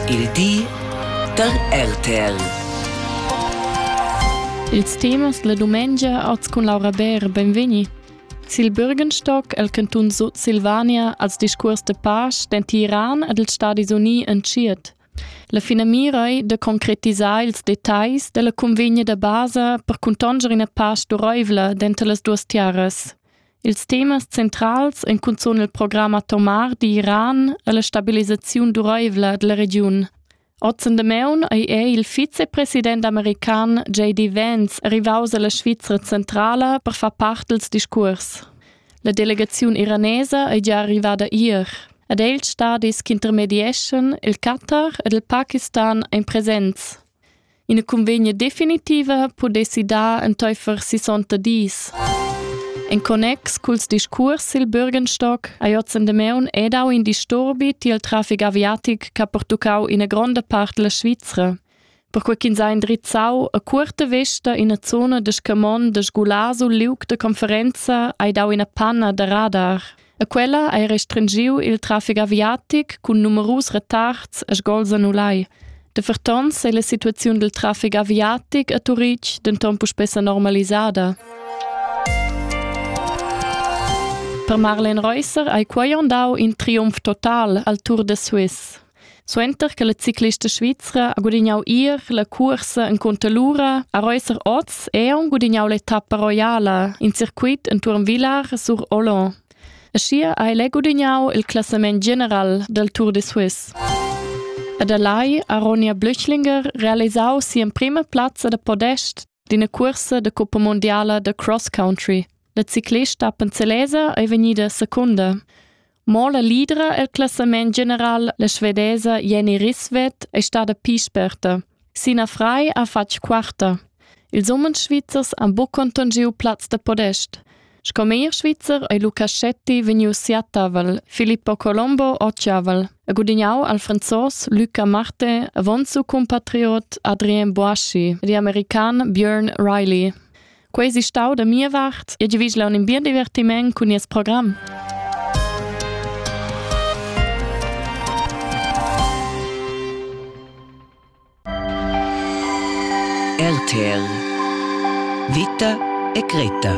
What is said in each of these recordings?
Il di da RTL. Ils temas la dumengia oz cun Laura Bär, benvegni. Sil Bürgenstock el cantun Sutsilvania als discurs de pace den Tiran ed els Stadis Uni entschiet. La finamira ei de concretisar ils details della convegna da basa per contonger ina pace dureivla denter las duas tiaras. Ils temas centrals ein cunzun il program atomar d'Iran e la stabilisaziun duraivla dalla regiun. Ozen Demaun ei è il vicepresident american JD Vance rivaus alla Svizra centrala per far part dils discuors. La delegaziun iranesa ei gia arrivada ier ed ei ils stadis ch'intermedieschan il Qatar ed il Pakistan ein presents. Ina cunvegna definitiva pudessi dar entaifer sissonta dis. En connex culs discurs sil Bürgenstock hai oz en Demaun è dau in disturbi tiel traffic aviatic che ha pertuccau ina gronda part della Svizra. Perquei ch'ins ha indrizzau a curta vesta ina zona de Scamon de Sgulasu liug de conferenza hai dau ina panna da radar. E quella ha restringiu il traffic aviatic cun numerus retards e sgols annulai. De fertons ei la situaziun dil traffic aviatic a Turitg denton puspè normalisada. Per Marlen Reusser hai quai dau in triumf total al Tour de Suisse. Suenter che la ciclista svizra ha gudignau ier la cursa encunter l'ura a Reusser oz è aunc gudignau l'etappa roiala in circuit entuorn Vilar sur Olon. Aschia ha el è gudignau il classament general del Tour de Suisse. Ed a Lai ha Ronja Blüchlinger realisau sia prima plazza da podest d'ina cursa de Coppa Mondiala de Cross Country. La ciclista Panzelese è vegnida secunda. Mo la lidra el classament general, la svedesa Jenny Risvet, è stada pli sperta. Sina Frei ha fatg quarta. Ils umens svizzers han buc conton giu plaz da podest. Sco meglier svizzer ei Lucaschetti vegnius siatavel, Filippo Colombo occiavel, e gudignau al franzos Luca Marte avon su compatriot Adrien Boaschi e di american Björn Riley. Quei si stau da mia vart e giavigl un in bien divertiment cun nies program. RTL Vita e Greta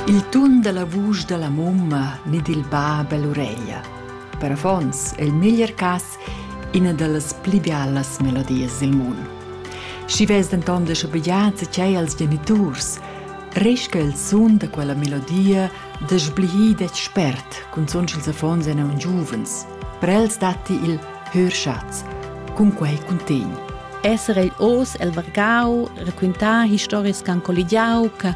Il tun dalla vusch dalla mumma ni dil bab ell'ureglia. Per affons è il meglier cass ina dallas pli bialas melodias dil mund. Schi ves denton de schabegliar tgei als geniturs, resca il sun da quella melodia da sblihir detg spert, cunzunt sch'ils affons ein aunc giuvens. Per els datti il hörschatz, cun quei cuntegn. Esser ei oz el vargau, raquintar historias che han colligiau, che